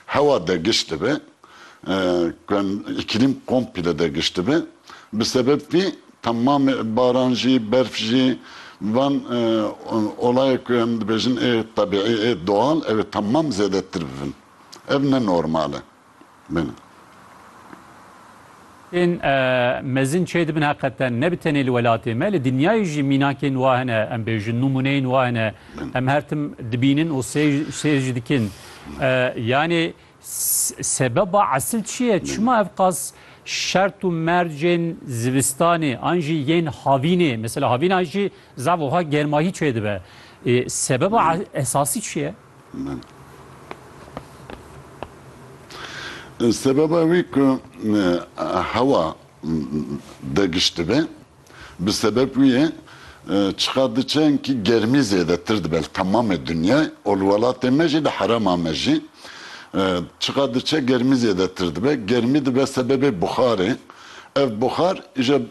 Hewa dergişt dibe, îklîm komple dergişt dibe. Bi sebeb vî temamê baran jî, berf jî van olayê ku em dibêjin ê tebîî ê doğal ew ê temam zêdetir bibin. Ev ne normal e. Bêne. Tên mezin çê dibin heqeten ne bi tenê li welatê me li dinyayê jî mînakên wa hene em bêjin nûmûneyên wa hene em her tim dibînin û sêr jî dikin yanê sebeba esil çi ye çima ev qas şert û mercên zivistanê an jî yên havînê mesela havîna jî zaf wiha germahî çê dibe sebeba esasî çi ye? min. Sebeba wî ku hewa digiş dibe, bi sebeb wî ye çiqa di çenkî germî zêdetir dibe li temamê dinyayê û li welatê me jî li herêma me jî çiqa di çe germî zêdetir dibe. Germî dibe sebebê buxarê. Ev buxar îje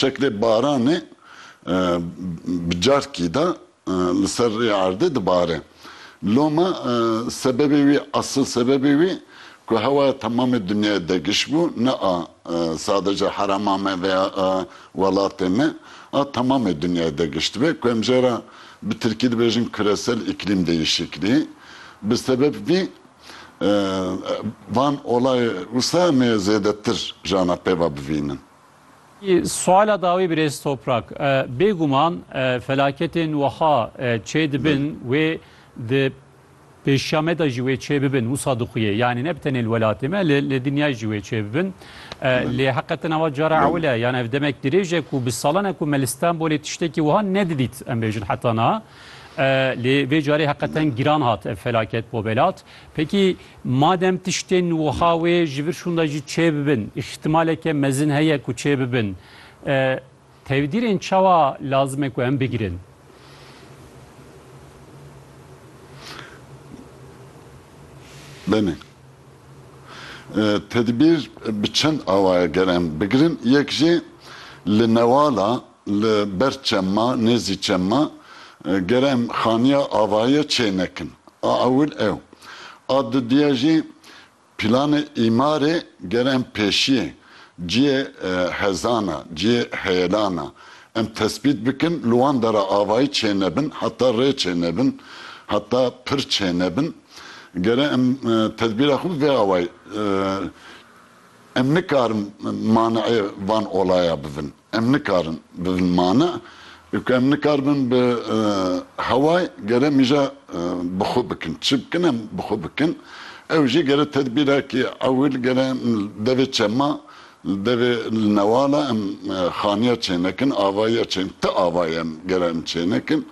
şeklê baranê bi carkî de Li ser rê erdê dibare. Loma sebebê wî, esil sebebê wî ku hewaya temamê dinyayê degiş bû, ne a sadece herema me veya a welatê me, a temamê dinyayê degiştibe ku em jê re bi tirkî dibêjin küresel iklîm değişikliği. Bi sebeb vî van olayê wisa em ê zêdetir ji ana pêva bivînin. Suala dawî birêz Toprak, bêguman felaketên wiha çêdibin wê di pêşiya me de jî wê çêbibin wisa dixuye. Yanî ne bi tenê li welatê me li dinyayê jî wê çêbibin. Lê heqetin ava cara ewil e yan ev demek dirêj e ku bi salan e ku me li Stenbolê tiştekî wiha nedidît em bêjin heta niha. Lê vê carê heqetin giran hat ev felaket bo welat. Peki Madem tiştên wiha wê ji vir şûnda jî çêbibin, îhtimaleke mezin heye ku çêbibin, tevdîrên çawa lazim e ku em bigirin? Benê. Tedbîr bi çend awaye ger em bigirin, yek jî li newala Li ber çemma, nêzî çemma gere em xaniya avaye çê nekin. A ewil ew. A dudiye jî pîlanê îmarê gere em pêşiyê ciyê hezana, ciyê heyelana em tesbît bikin, li wan dera avayî çê nebin, heta rê çê nebin, heta pir çê nebin. Gere em tedbîra xwe bi vê awayî em nikarin mani'ê van olaya bivin. Em nikarin bibin mane û ku em nikaribin bi heway gere mîja bi xwe bikin. Çi bikin em bi xwe bikin. Ew jî gere tedbîrekî ewil gere em li devê çema, li devê li newala em xaniya çênekin, avayiya çênekin, ti avayê em gere em çênekin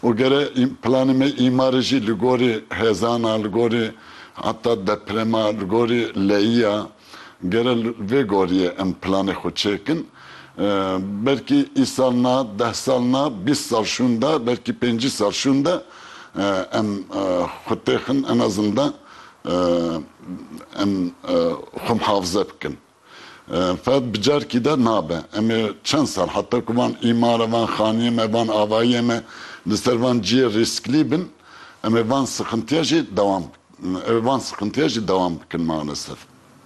û gere planê me îmarê jî li gorî hêzana, li gorî heta deprema, li gorî leyiya, Gere li vê goriyê em planê xwe çêkin, belkî îsal na, deh sal na, bîst sal şûnde, belkî pêncî sal şûnde em xwe têxin en azin de em xwe mihafize bikin. Feqet bi carkî de nabe. Em ê çend sal heta ku van îmara, van xaniyê me, van avayiyê me li ser van ciyê rîsklî bin, em ê van sixintiya jî dewam bikin. Ev van sıqıntıya jî dewam bikin maalesef.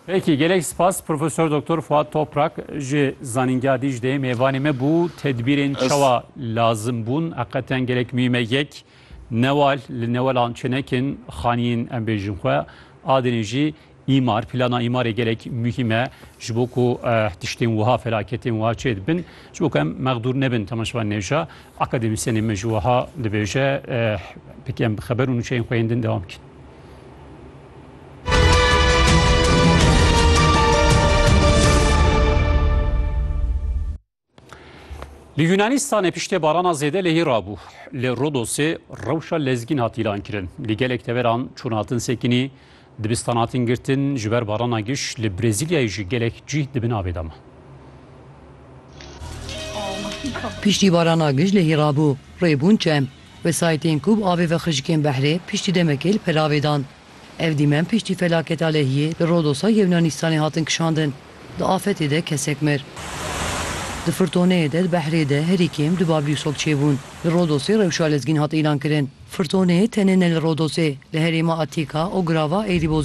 Peki gelek spas Professor Doktor Fuat Toprak ji Zanîngeha Dîcleyê mêvanê me bû. Tedbîrên Ez- çawa lazim bûn heqeten gelek muhîm e. Yek newal li newelan çênekin xaniyên em bêjin xwe. A dinê jî îmar plana îmarê gelek muhîm e ji bo ku eh, tiştên wiha felaketên wiha çêdibin ji bo ku em mexdûr nebin temaşevan nêşa. Akademîsyenê me jî wiha dibêje, Pêkî em bi xeber û nûçeyên xwe yên din dewam bikin. Li Yûnanîstanê piştê barana zêde lehî rabû. Li Rodosê rewşa lezgîn hat îlankirin. Li gelek deveran çûn hatin sekinî, Dibistan hatin girtin ji ber barana giş li Brezîlyayê jî gelek cîh di bin avê de man. Piştî barana giş lehî rabû, rê bûn çem. Wesayîtên ku bi avê ve xişikên behrê piştî demekê li pelavê dan. Ev dîmen piştî felaketa lehiyê li Rodosa Yewnanîstanê hatin kişandin. Di afetê de kesek mir. Di firtoneyê de di behrê de herî kêm du bablîsok çêbûn. Li Rodosê rewşa lezgîn hat îlankirin. Firtoneyê tenê ne li Rodosê, li herêma Atîka û girava Eirîbozê jî hat îlankirin.